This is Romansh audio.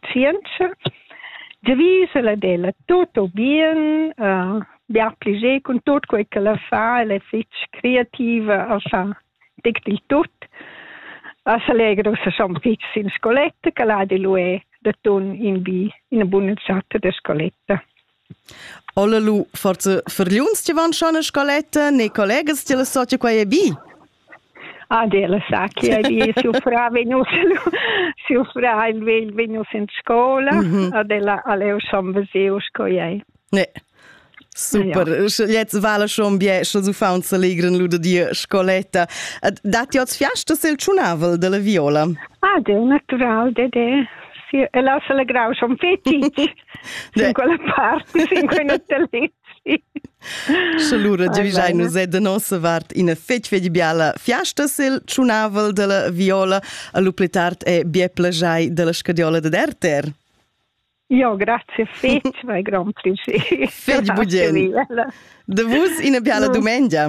Tschientscher. Giavisch el ed ella tut bien, uh, bia pli ge cun tut quei che la fa, ella è fetg creativa, a fa tec dil tut. A s'allegra ussa schon fetg sin scoletta, che la di lu è da ton in bi ina buna chatta da scoletta. Olla lu forza fargliuns ti van schon a scoletta ne collegas ti la socia quei è bi? Ah, della sa che è siu fra venus siu fra il vegl venus in scola mm -hmm. ad ella aleu schon veseu sco ei. Ne. Super, jetzt vale schon bien, schon so faun se legren lu de dir scoletta. Dat ti oz fiasta sil tschunavel della viola? Ah, de natural de de. Si, e la se legrau schon fetic. Sin quella part, sin quei hotelletg. Sche lura giavischai nus de nossa vart ina fetg fetg biala fiasta sil tschunavel della viola a lu pli tard e bien plagiai della scadiola de Derter. Jo, grazie fetg, vai grand piacere. Fetg bugien. De vus ina biala dumengia.